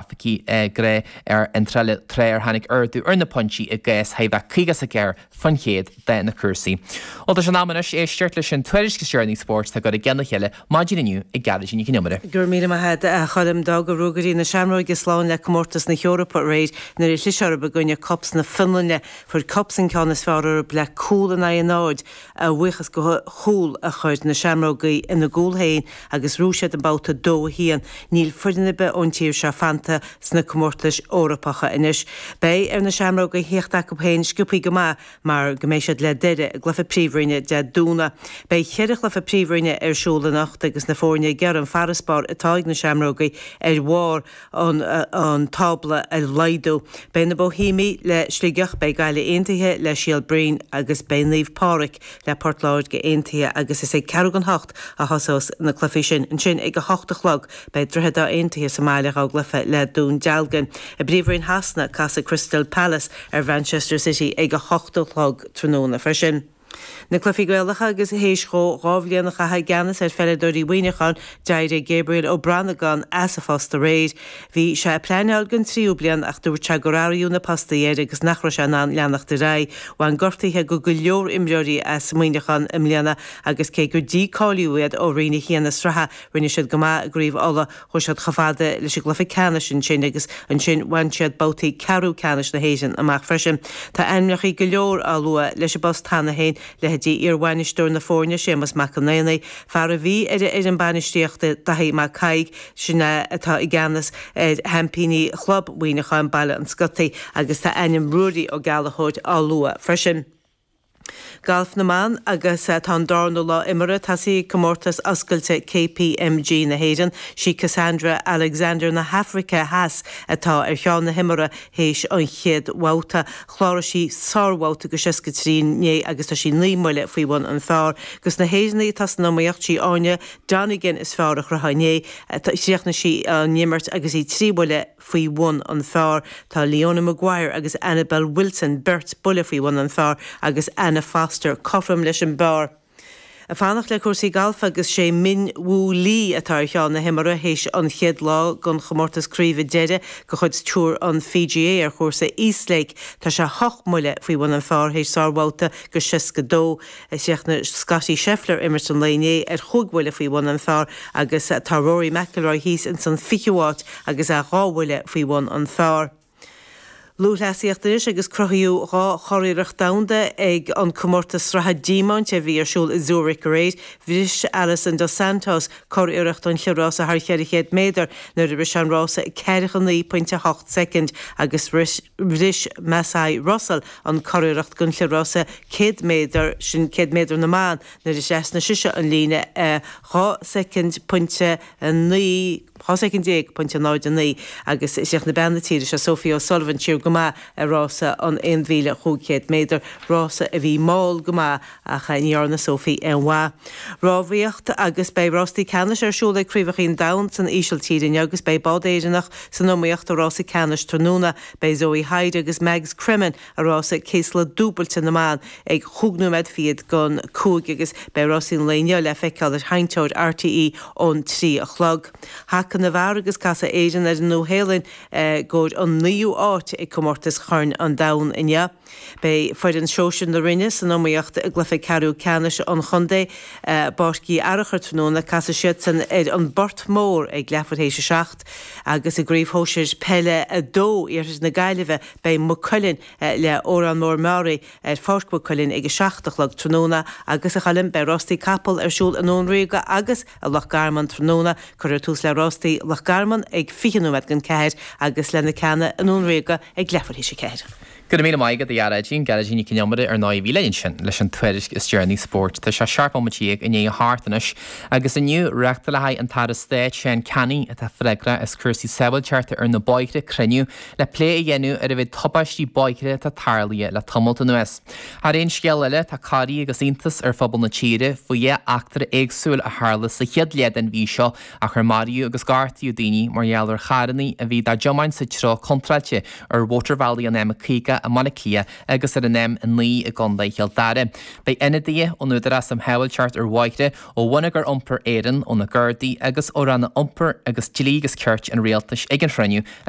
grafaicí i gcré ar an dtrealamh tráth ar tháinig ardú ar na pointí i gcás thart ar 54 faoin chéad de na cúrsaí. Bhuel, tá sé in am anois éisteacht leis an tuairisc is deireanaí spóirt atá curtha i gceann a chéile maidin inniu ag Gearóidín Nic an Iomaire. Go raibh míle maith agat, a Choilm. D'fhága Ruagairí na Seamróige slán le Comórtas na hEorpa aréir nuair a chlis orthu i gcoinne KuPS na Fionlainne. Fuair KuPS an ceann is fearr orthu le cúl in aghaidh a náid, a bhuíochas go chúl a chuir na Seamrógaí ina gcúl féin agus ghnóthaigh siad an babhta dó haon. Níl foireann ar bith ón tír seo fanta sna comórtais Eorpacha anois. Beidh ar na Seamrógaí a thíocht chucu féin sciobtha go maith mar go mbeidh siad le Doire i gcluiche Príomhroinne Dé Domhnaigh. Beidh ceithre chluiche Príomhroinne ar siúl anocht agus na foirne ag iarraidh an farasbarr atá ag na Seamrógaí ar bharr an tábla a laghdú. Beidh na Boihéamaigh le Sligeach, beidh Gaillimh aontaithe le Síol Bhroin agus beidh Naomh Pádraig le Port Láirge aontaithe agus is ag ceathrú don hocht a thosós na cluichí sin. Ansin ag a hocht a chlog beidh Droichead Átha aontaithe sa mbaile dhá gcluiche le Dún Dealgan. I bPríomhroinn Shasana casfaidh Crystal Palace ar Mhanchester City ag a hocht a chlog tráthnóna freisin. Na Cluichí Gaelacha agus théis dhó dhá bhliain a chaitheamh i gceannas ar pheileadóirí Mhuineacháin, d'éirigh Gabriel Ó Branagáin as a phost aréir. Bhí sé ag pleaineáil don tríú bliain ach dúirt sé gur athraíodh na postaí air agus nach raibh sé in ann leanacht ar aghaidh. Bhain gortaithe go go leor imreoirí as Muineachán i mbliana agus cé gur dícáilíodh iad ó roinn a haon na sraithe, rinne siad go maith i gCraobh Uladh. Chuaigh siad chomh fada leis an gcluiche ceannais ansin agus ansin bhain siad babhtaí ceathrú ceannais na hÉireann amach freisin. Tá ainmneacha go leor á lua leis an bpost cheana féin, leithéidí iarbhainisteoir na foirne, Séamus Mac an Aonaigh, fear a bhí ar an fhoireann bainistíochta, Daithí Mac Thaidhg, sin é atá i gceannas ar sheaimpíní chlub Mhuineacháin, Baile an Scotaigh, agus tá ainm Ruairí Ó Gallchóir á lua freisin. Galf na mBan agus tá an darna lá imeartha tosaithe ag Comórtas Oscailte KPMG na hÉireann. Sí Cassandra Alexander na hAfraice Theas atá ar cheann na himeartha théis an chéad bhabhta. Chláraigh sí sárbhabhta go seasca trí inné agus tá sí naoi mbuille faoi bhun an phár. Agus na hÉireannaigh atá san iomaíocht, sí Áine Donegan is fearr a chruthaigh inné. Chríochnaigh sí an imirt agus í trí bhuille. faoi bhun an phár. Tá Leona Maguire agus Annabel Wilson, beirt buille faoi bhun an phár, agus Anna Foster cothrom leis an bpár. Ag fanacht le cúrsaí gailf agus sé Min Woo Lee atá ar cheann na himeartha théis an chéad lá den chomórtas craoibhe deiridh de chuid Tour an PGA ar chúrsa East Lake. Tá sé hocht mbuille faoi bhun an phár théis sárbhabhta go 62. Chríochnaigh Scottie Scheffler imirt an lae inné ar chúig bhuille faoi bhun an phar agus tá Rory McIlroy thíos ins an 20ú áit agus é dhá bhuille faoi bhun an phar. Lúthchleasaíocht anois agus cruthaíodh dhá churiarracht domhanda ag an Comórtas Sraithe Diamant a bhí ar siúl i Zurich aréir. Bhris Alison dos Santos curiarracht an chliathrása thar 400 méadar nuair a rith sé an rása i 49 pointe 8 soicind agus rith Bhris Masai Russell an curiarracht don chliathrása 100 méadar, sin céad méadar na mban, nuair a thrasnaigh sise an líne i 2 soicind, pointe 9, 12 soicind, pointe 09, agus chríochnaigh bean na tíre seo, Sophie O'Sullivan, siar go maith i rása an 1,500 méadar, rása a bhí mall go maith ach ní dhearna Sophie aon mhaith. Rámhaíocht agus beidh rástaí ceannais ar siúl ag Craobhacha an Domhain san Ísiltír inniu agus beidh bád Éireannach san iomaíocht i rása ceannais tráthnóna. Beidh Zoe Hyde agus Mags Cremen i rása céasla dúbailte na mban ag chúig nóiméad fichead don cúig agus beidh rásaí an lae inniu le feiceáil ar sheinnteoir RTÉ ón trí a chlog. Haca na bhfear agus casfaidh Éirinn ar an Nua-Shéalainn i gcomhair an naoú áit ag comórtas Choirn an Domhain inniu. Beidh foireann shóisir na Rinne san iomaíocht i gcluiche ceathrú ceannais an chontae i bPáirc Uí Fhearchair tráthnóna. Casfaidh siadsan ar An bPort Mór ag leathuair théis a seacht agus i gCraobh Shóisir Peile 2 Iarthair na Gaillimhe beidh Maigh Cuilinn le Órán Mór-Meáraí ar Pháirc Mhaigh Cuilinn ag a seacht a chlog tráthnóna agus a Choilm beidh Rástaí Capall ar siúl i nDún Ríoga agus i Loch Garman tráthnóna. Cuirfear tús le Rástaí Loch Garman ag fiche nóiméad don ceathair agus le na ceanna i nDún Ríoga ag leathuair théis a ceathair. Go raibh míle maith agat a Ghearóidín, Gearóidín Nic an Iomaire ar ndóigh a bhí linn ansin leis an tuairisc is deireanaí spóirt. Tá sé seacht bomaite dhéag i ndiaidh a hocht anois agus inniu reáchtálfaidh an tAire Stáit Seán Canney atá freagrach as cúrsaí sábháilteachta ar na bóithre cruinniú le plé a dhéanamh ar an mhéid tubáistí bóithre atá tarlaithe le tamalt anuas. Thar aon scéal eile tá corraí agus iontas ar phobal na tíre faoi dhá eachtra éagsúil a tharla sa chéad leath den mhí seo áit ar maraíodh agus gortaíodh daoine mar gheall ar charrannaí a bhí dá dtiomáint sa treo contráilte ar mhótarbhealaí an M50 i mBaile Átha Cliath agus ar an M9 i gContae Chill Dara. Beidh ionadaithe ón Údarás um Shábháilteacht ar Bhóithre, ó Bhonneagar Iompair Éireann, ó na Gardaí agus ó Ranna Iompair agus Dlí agus Cirt an Rialtais ag an chruinniú a